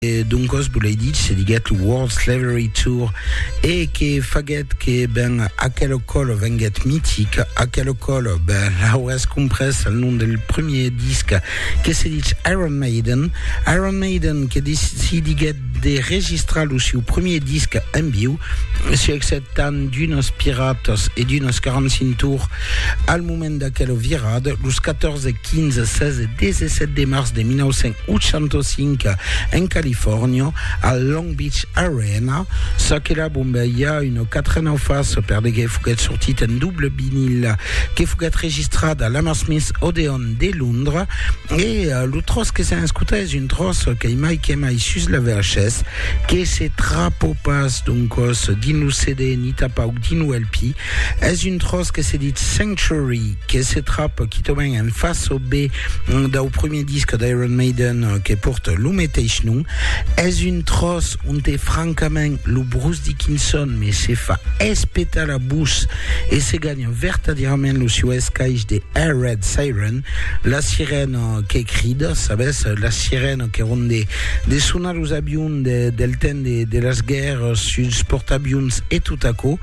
Doncos volei ditz, se diguèt lo World Slavery Tour, e que faguèt que ben aquela còla venguèt mitica, aquela còla ben l'auràs comprés al nom del premier disc que se ditz Iron Maiden, Iron Maiden que decidiguèt de registrar lo siu premier disc en viu, se exceptant d'unes piratas e d'unes 45 tours al moment d'aquela virada, los 14, 15, 16 e 17 de març de 1900. 805 en Califòrnia, al Long Beach Arena. Ça que la bombeia, una quatre ans fas, perdegué foguèt sortit en double vinil, que foguèt registrat a l'Hammersmith Odeon de Londres, e eh, lo tros que s'en escuta es un tros qu'ei mai que mai sus la verges, que se trapo pas, doncos, dins lo CD ni tapauc dins lo LP, Es un tròç que se dit Sanctuary, que se tròp quitament en fas o B dau prumèr disc d'Iron Maiden que pòrta lo meteis nom. Es un tròç onte francament lo Bruce Dickinson me se fa espetar la bouch e se ganha vertadierament lo sieu escaish de A Red Siren, la sirena que crida, sabes, la sirena que ronde de son los avions de, del temps de, de las guerres, suls portavions e tot aquò.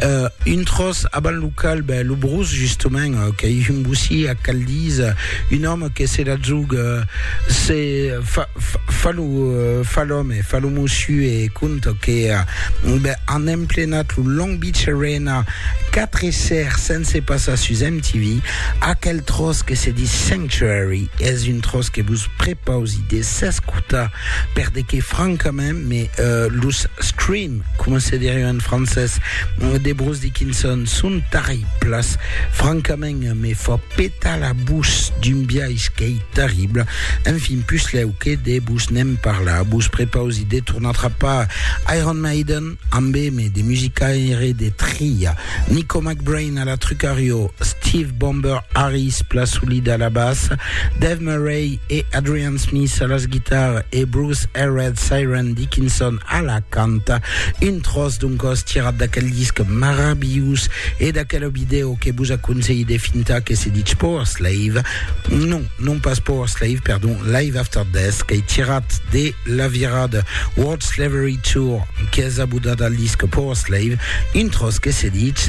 Uh, un tros avant lo cal, ben, lo brus, justament, uh, que hi un bossí a Caldís, uh, un home que se la zug, uh, se fa, fa, fa lo, uh, fa l'home, fa lo mossu e conta que uh, ben, han emplenat lo Long Beach Arena 4 e ser sense passar sus MTV, aquel tros que se dit Sanctuary, és un tros que vos prepausi de S'escota, per de que francament me los scream, coma se derion en francés, de Bruce Dickinson son tarriplas, francament me fa petar la bouch d'un biais qu'ei tarrible, enfin puslèu que de vos ne'n parlar, vos prepausi de tornar trapar Iron Maiden. Ambeme de musicaire de tria, Nico McBrain a la trucariò, Steve Bomber Harris pla solida a la bassa, Dave Murray e Adrian Smith a las guitarras e Bruce Herred Siren Dickinson a la canta. Un tròç d'un còs tirat d'aquel disc marabilhós e d'aquela vidèo que vos aconselhi de fintar que se ditz Powerslave, non, non pas Powerslave, perdon, Live After Death, qu'ei tirat de la virada World Slavery Tour qu'es abodada al disc Power Slave, un tròç que se ditz.